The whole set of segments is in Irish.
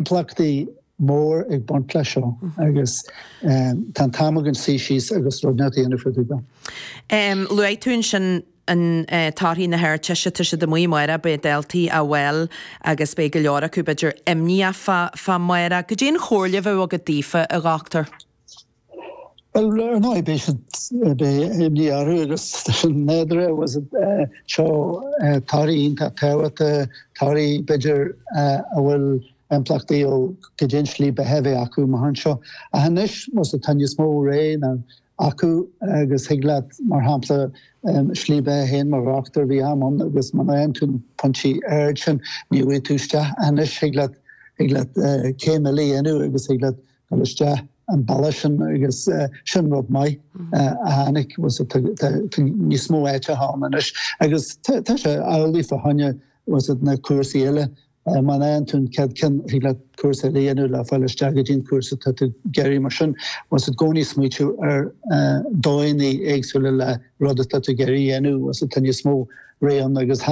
Impleachtaí mór ag baint leis seo agus tá an t-am againn suí síos agus rud ceart a dhéanamh fá dtaobh dó. Luaigh tú ansin torthaí na hArdteiste, tá siad amuigh amárach, beidh daltaí sa bhaile agus beidh go leor acu b'fhéidir imníoch fá amárach. Goidé an chomhairle a bheadh agat daofa a dhochtúir? Bhuel, ar ndóigh, b'é sin beidh imní orthu agus sin nádúrtha is iad seo torthaí iontach tábhachta, torthaí b'fhéidir a bhfuil impleachtaí ó goidé an slí beatha a bheidh acu amach anseo. Ach anois, más atá níos mó rogha acu agus thig leat, mar shampla, slí beatha féin mar dhochtúir, bhí am ann agus muna bhfaigheann tú na pointí arda sin, ní bhfaighidh tú isteach. Anois thig leat thig leat céim eile a dhéanamh agus thig leat dul isteach an bealach sin agus sin rud maith atá níos mó áiteacha ann anois agus tá sé amhlaidh fá choinne na cúrsaí eile. Má fhaigheann tú an chéad cheann, thig leat cúrsa eile a dhéanamh le fáil isteach go dtí an cúrsa atá tú ag iarraidh. Mar sin, bí i gcónaí smaoitiú ar dhóigheannaí éagsúla le rud atá tú ag iarraidh a dhéanamh, tá níos mó rogha ann agus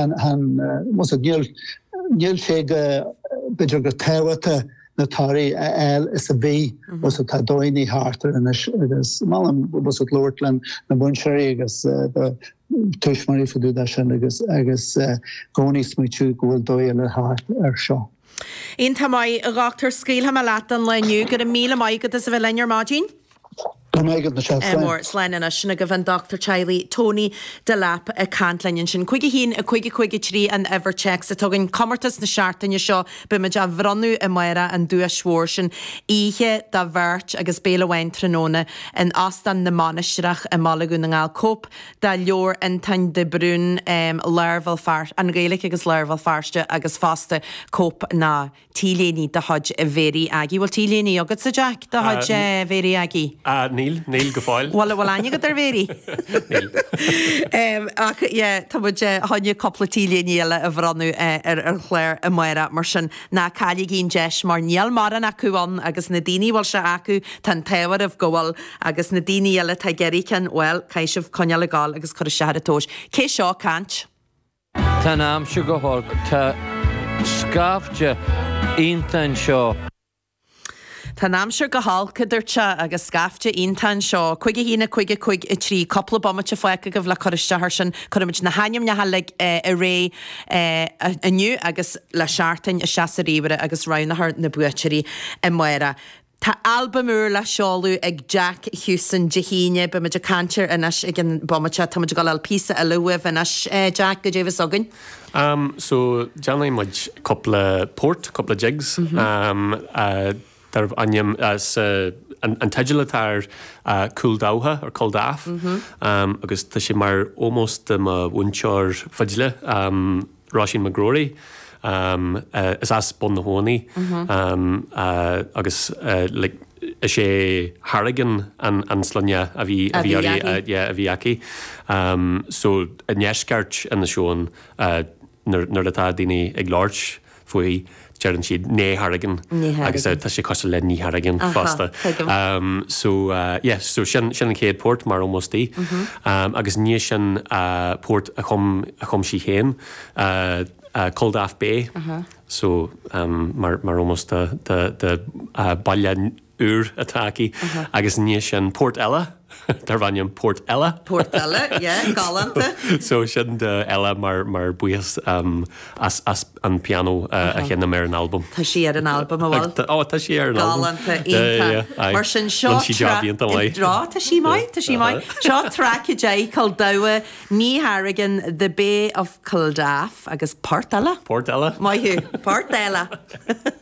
níl sé go, b'fhéidir, go tábhachtach. na torthaí a fháil is a bhí, so tá dóigheannaí thart air anois agus molaim bheith ag labhairt le na múinteoirí agus do tuismitheoirí fá dtaobh de sin agus agus i gcónaí smaoitiú go bhfuil dóigh eile thart air seo. Iontach maith, a dhochtúir. Scaoilfidh mé leat don lá inniu. Go raibh míle maith agat as a bheith linn ar maidin. Go ndéana a mhaith duit slán. Á slán anois sin agaibh an Dochtúir Teaghlaigh Tony Delap ag caint linn ansin. 51 50 53 an uimhir téacs atá againn. Comórtas na seachtaine seo beimid á bhronnadh amárach an duais mhór sin oíche do bheirt agus béile amháin tráthnóna in Óstán na Mainistreach i mBaile Dhún na nGall. Cóip de leabhar Fhiontáin de Brún, Lár Bhéal Feirste, An Ghaeilge agus Lár Bhéal Feirste agus fosta cóip nó. T-léine de chuid Mhéirí Aggie. Bhfuil t-léine agatsa, Jack, de chuid Mhéirí Aggie? Níl, níl go fóill. Bhfuil, bhfuil aithne agat ar Mhéirí? Níl. Ach yeah, tá muid, chun cúpla t-léine eile a bhronnadh ar an chlár amárach, mar sin ná cailligí an deis mar níl mórán acu ann agus na daoine a bhfuil siad acu, tá an t-ádh oraibh go bhfuil agus na daoine eile atá ag iarraidh ceann, bhuel, caithfidh sibh coinneáil ag gabháil agus cur isteach ar an tomhas. Cé seo ag caint? Tá an aimsir go holc. Tá scaifte iontach anseo. Tá an aimsir go holc, a dúirt sé, agus scaifte iontach anseo. Cúig a haon, a cúig, a cúig a trí. Cúpla bomaite fágtha agaibh le cur isteach air sin. Cuirfimid na hainmneacha uilig i rith inniu agus le seachtain isteach sa ríomhaire agus roghnófar na buaiteoirí amárach. Tá albam úr le seoladh ag Jack Houston Dé hAoine. Beidh muid ag caint air anois i gceann bomaite. Tá muid ag dul a fháil píosa eile uaibh anois, Jack, cad é a bheas againn. Am, so déanfaidh muid cúpla port, cúpla jigs, am, darb ainm, so an, an teideal atá air, Cúl Dabhcha, or Culdaff, am, agus tá sé mar ómós do mo mhúinteoir fidle, am, Róisín McGrory Is as Bun na hAbhann í agus is é Harrigan an sloinne a bhí uirthi a bhí aici So i ndeisceart Inis Eoghain nuair atá daoine ag labhairt fúithi, deireann siad née Harrigan agus tá sé cosúil le Ní Harrigan fosta. So yeah so sin sin an chéad port mar ómós di agus i ndiaidh sin port a chum sí fhéin Culdaff Bay so mar ómós don bhaile úr atá aici agus i ndiaidh sin port eile darb ainm Port Ella. Port Ella, yeah, galánta. So sin do Ella mar, mar buíochas um, as, as an piano uh, a sheinm ar an albam. Tá sí ar an albam an bhfuil. Ó, tá sí ar an albam. Galánta, iontach. Mar sin seo Drá, tá sí maith, tá sí maith. Seo track i dé Cúl Dabhcha Ní Harrigan, The Bay of Culdaff agus Port Ella. Port Ella. Maith thú, Port Ella.